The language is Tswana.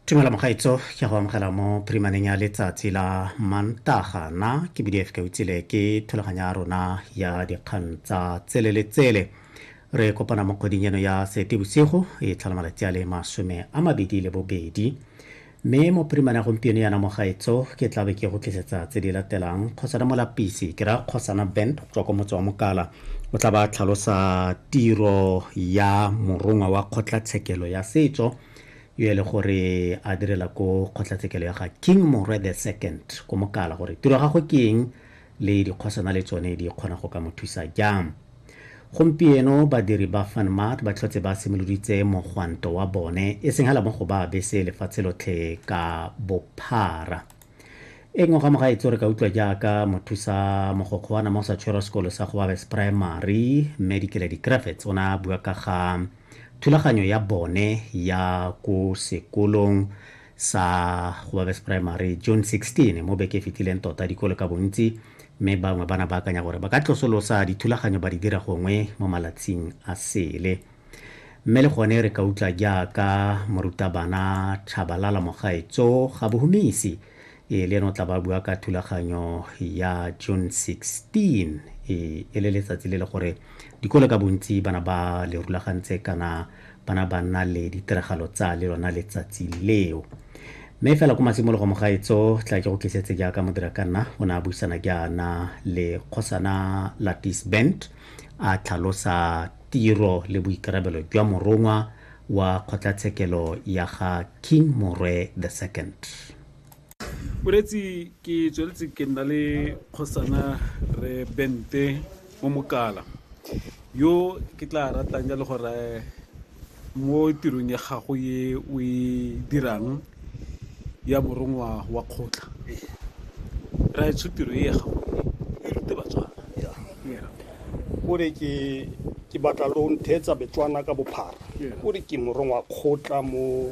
tumela mogaitso ke go amogela mo primaneng ya letsatsi la mantaga na ke bdf ka utsile ke thulaganyo ya rona ya dikgang tsa tsele le tsele re kopana mo kgweding eno ya sete bosigo e tlhola malatsi a le masome a mabedi le bobedi Mme mo primana gompieno yana mo gaetso ke tla be ke go tlisetsa tse di latelang kgosana molapisi ke raya kgosana band go tswa kwa motse wa mokala o tla ba tlhalosa tiro ya morongwa wa kgotlatshekelo ya setso yo e le gore a direla ko kgotlatshekelo ya ga king morwe the second ko mokala gore tiro ya gagwe ke eng le dikgosana le tsone di kgona go ka mo thusa jang gompieno badiri ba fanmat ba tlhotse ba simoloditse mogwanto wa bone e seng hala mo go ba bese lefatshe lotlhe ka bophara e nngwe ga moga etso re ka utlwa jaaka mothusa mogokgo wa nama o sa tshwerwa sekolo sa gobabes primary mme dikele di-cravets o na bua ka ga thulaganyo ya bone ya ko sekolong sa Gobabes Primary June 16 mo beke e fetileng tota dikolo ka bontsi mme bangwe bana ba akanya gore ba ka tlosolosa dithulaganyo ba di dira gongwe mo malatsing a sele mme le gone re ka utlwa jaaka morutabana Thabalala Mogaetso ga bohumisi Ee, le ene o tla ba bua ka thulaganyo ya June 16 e, e le letsatsi le le gore dikolo ka bontsi bana ba le rulagantse kana bana ba nna le ditiragalo tsa le lona letsatsi leo. Mme fela ko matshimologo mogaetso tla ke go tlisetse jaaka modira ka nna o ne a buisana jaana le kgosana Latis Bent a tlhalosa tiro le boikarabelo jwa morongwa wa kgotlatshekelo ya ga King Morwe the Second. Moreetsi ke tsweletse ke nna le kgosana re bente mo mokala yo ke tla ratang jalo gore mo tirong ya gago ye o e dirang ya morongwa wa kgotla ra e tshotiro e ya gago e e rute batswana o re ke ke batla lo ntheetsa betswana ka bophara o re ke morongwa kgotla mo